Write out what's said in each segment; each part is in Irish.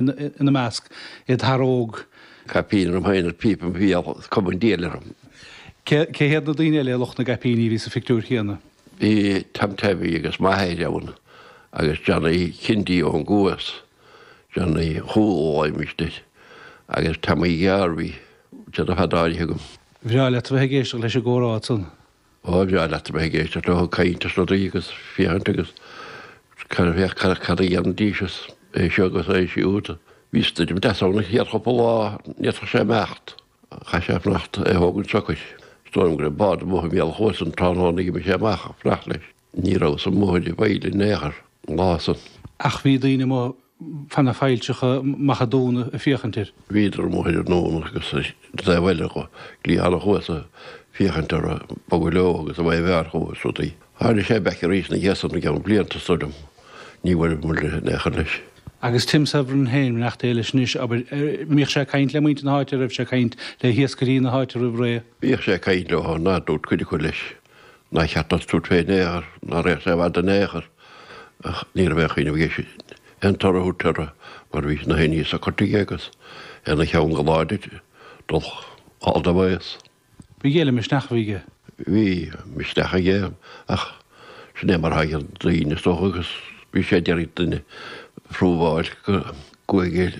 ina measc, id fhear óg. Caipín orm féin is píopa im bhéal, cuma an diabhail orm. Cé hiad na daoine eile, lucht na gcaipíní, a bhí sa phictiúr chéanna? Bhí Tom Leahy agus m'athair ann, agus Johnny Kennedy ón gCuas, Johnny Chúl ó Ogham istigh, agus Tommy Gearr, bhí sé do fad áirithe agam. Bhreá leat a bheith ag éisteacht leis an gcomhrá san. Bhuel, bhreá leat a bheith ag éisteacht leo ag caint is rudaí agus féachaint agus cad, féach cad, cad a dhéanfaidís is é seo agus é siúd. Bhí stoirm deas ann an chéad chúpla lá, n'fhéadfadh sé imeacht, chaith sé fanacht is é thógaint socair. Is dóigh liom go raibh bád amuigh i mbéal an Chuasa an tráthnóna a d'imigh sé amach ag fanacht leis. Ní rabhas-sa amuigh ar an bhfaill in aon chor an lá san. Ach bhí daoine amuigh fan na failltreacha maithe domhain ag féachaint air. Bhíodar amuigh ar an nDún agus sa taobh eile go cliathán an Chuasa, ag féachaint air ag bogadh leo agus a bheith bhfearr dhó is rudaí. Tháinig sé back arís ina dhiaidh san i gceann blianta, is dóigh liom. Ní bhuaileamair in aon chor leis. Agus Tim Severin féin, reacht é leis anois, abair, mbíodh sé ag caint le muintir na háite, raibh sé ag caint le hiascairí na háite roimh ré. Bhíodh sé ag caint leo, ar ndóigh dúirt cuid acu leis. Nár cheart dó tabhairt fé in aon chor, ná raghadh sé i bhfad in aon chor, ach ní raibh aon chuimhneamh aige sin aon toradh a thabhairt orthu, mar bhí nach aon ní socraithe aige agus é 'na cheann go láidir dul sall de bhéas. Bhí go leor misneach aige. Bhí misneach aige, ach sin é mar a thagann daoine, is dócha, agus bhí sé ag iarraidh duine a phrúbháil go gcuaigh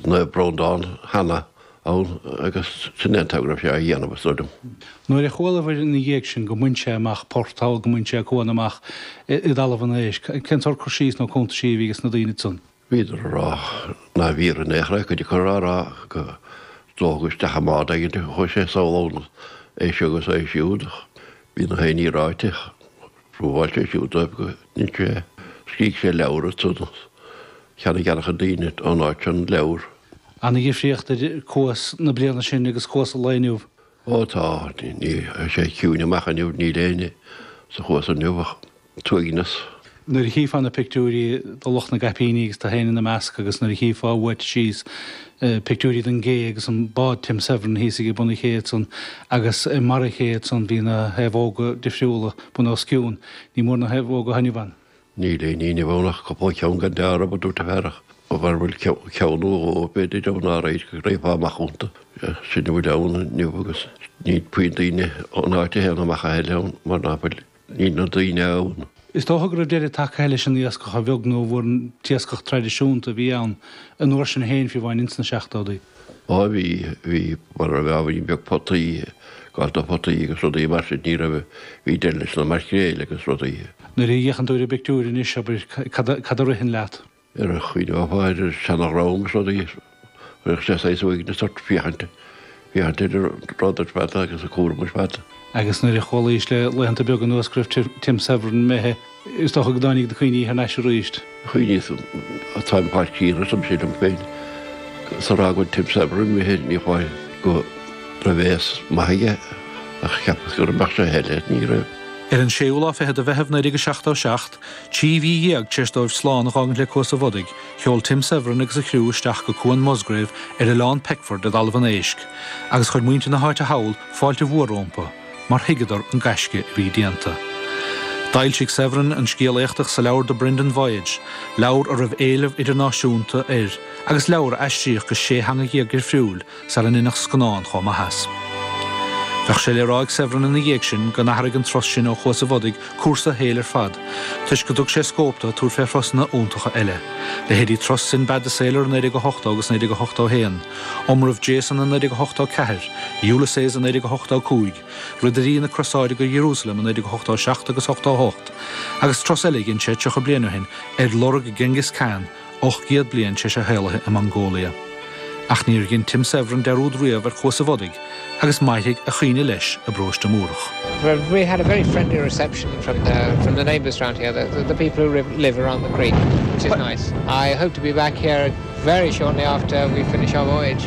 Naomh Breandán cheana. ann agus é indéanta an gníomh seo a dhéanamh, is dóigh liom. Nuair a chualabhair ina dhiaidh sin go mbain sé amach port thall, go mbain sé cuan amach i dTalamh an Éisc, cén sórt cur síos nó cúntaisí a bhí ag na daoine san? Bhíodar ag rá nárbh fhíor in aon chor é, cuid acu ag rá go dtógadh isteach i mbád éigint é, chuaigh sé sall ann, é seo agus é siúd, bhí nach aon ní ráite. Phrobháil sé siúd dóibh go ndein sé é, scrígh sé leabhar air ansan is cheannaigh ana-chuid daoine ón áit seo an leabhar. An-dhifríocht idir cuas na bliana sin agus cuas an lae inniu? Ó tá, ní, tá sé ciúin amach inniu, níl éinne sa chuas inniu ach an t-uaigneas. Nuair a chífeá na pictiúirí de lucht na gcaipíní agus tú féin ina measc agus nuair a chífeá uait síos na pictiúirí den gcé agus an bád Tim Severin thíos aige bun an ché ansan agus i mbarr an ché ansan bhí na naomhóga difriúla bun os cionn. Ní mór na naomhóga atá inniu ann. Níl aon ní inniu ann ach cúpla ceann gan deáramh, a dúirt an fear, ach mara bhfuil ceann nó dhó b'fhéidir ann aréir go raghfá amach iontu. Sin a bhfuil ann inniu agus níl puinn daoine ón áit a théann amach a thuilleadh ann mar ná fuil. Níl na daoine ann. Is dócha go raibh deireadh tagtha leis an iascach a bheag nó a mhór an t-iascach traidisiúnta a bhí ann an uair sin féin, fiú amháin insna seachtódaí. Á bhí, bhí, mura raibh ábhairín beag potaí, gabháil do photaí agus rudaí mar sin, ní raibh, bhí deireadh leis na maircréil agus rudaí. Nuair a fhéachann tú ar an bpictiúir anois, abair, cad a ritheann leat? Ar a chuid ábhair is seanadh romham is rud a chuirfeadh sé saghas uaignis ort, féachaint, féachaint ar an rud ar fad agus an cúram ar fad. Agus nuair a chualaíos le laethanta beaga anuas go raibh Tim Severin imithe, is dócha go dtáinig na cuimhní thar n-ais arís. Chuimhníos an táim thar cíonn agus ansin liom féin, sara fhágann Tim Severin imithe, ní foláir go raibh aois mhaith aige, ach cheapas go mbeadh sé aige, ní raibh. Ar an séú lá fichead de Mheitheamh 1977, Trí mhí dhéag tar éis dóibh slán a dh'fhágaint le Cuas a' Bhodaigh, sheol Tim Severin agus a chriú isteach go Cuan Musgrave ar Oileán Peckford i dTalamh an Éisc, agus chuir muintir na háite thall fáilte mhór rómpu, mar thuigeadar an gaisce a bhí déanta. D'fhoilsigh Severin an scéal éachtach sa leabhar The Brendan Voyage, leabhar a raibh éileamh idirnáisiúnta air, agus leabhar a aistríodh go sé theanga dhéag dhifriúil, sara ndeineadh scannán chomh maith as. Bheadh sé le rá ag Severin ina dhiaidh sin go n-athraigh an turas sin ó Chuas a' Bhodaigh cúrsa a shaoil ar fad, toisc go dtug sé scóip do, tabhairt fé thurasanna iontacha eile, leithéidí turas Sinbad the Sailor i 1980 agus 1981, Iomramh Jason i 1984, Ulysses i 1985, Ridirí na Crosáide go Iarúsailéim i 1987 agus 88, agus turas eile a dhein sé tríocha bliain ó shin, ar lorg Genghis Khan, ocht gcéad bliain tar éis a shaolaithe i Mongolia. Ach níor dhein Tim Severin dearúd riamh ar Chuas a' Bhodaigh, agus mairfidh a chuimhne leis i bParóiste Múrach. Bhuel, we had a very friendly reception from the, from the neighbours round here, the, the people who live, live around the creek, which is nice. I hope to be back here very shortly after we finish our voyage.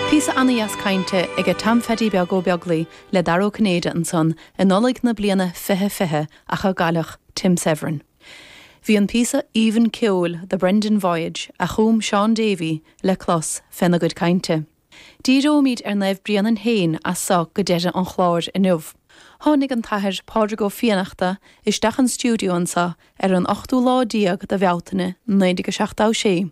Píosa ana-dheas cainte aige Tom Pheaidí Beag Ó Beaglaoi le Dara Ó Cinnéide ansan i Nollaig na bliana fiche fiche ach a gcailleadh Tim Severin. Bhí an píosa aoibhinn ceoil The Brendan Voyage a chum Shaun Davey le clos féna gcuid cainte. Díreoimid ar Naomh Bréanainn féin as so go deireadh an chláir inniu. Tháinig an tAthair Pádraig Ó Fiannachta isteach an stiúideo anso ar an ochtú lá déag de Bhealtaine 1976